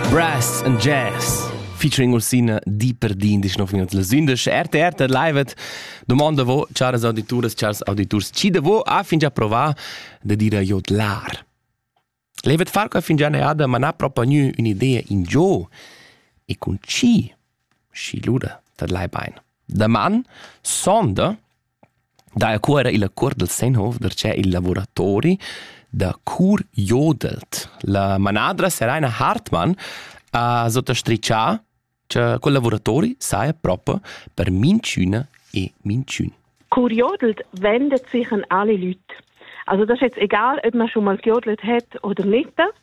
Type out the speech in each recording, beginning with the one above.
Brass and Jazz featuring Ursina di per di in disch nov minut las 11 RTR te live domanda vo chars auditures chars auditurs ci de vo a fin già provà de dire jodlar Levet far che fin già ne ada ma na propagnu un'idea in gio e con ci sci luda te lai bein da man sonda Daja Cuera illa cuort dal Sennhof darcheu il lavuratori da cur jodelt. La manadra Seraina Hartmann ha sottastrichà cha quel lavuratori saja proper per minchüna e minchün. Cur jodelt vendet sich an alle Leute. Also das ist jetzt egal, ob man schon mal jodelt hat oder nicht.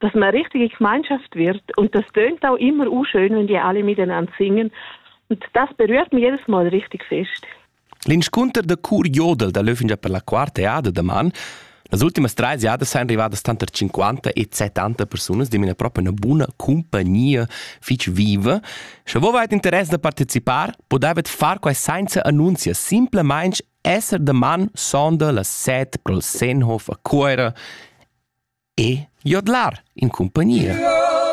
dass man richtige Gemeinschaft wird und das tönt auch immer unschön, wenn die alle miteinander singen und das berührt mich jedes Mal richtig fest. L'inscunter da cur jodel da Löffinger per la quarta eada da man Las ultimas treis jadas san arrivadas tanter 50 e 70 persunas di una propria una buna compagnia fitch viva. Sche vo vait interess da participar, po davet far quai senza annunzia, simplemente Esser da man sonda las set col Sennhof a Cuera e jodlar in cumpagnia.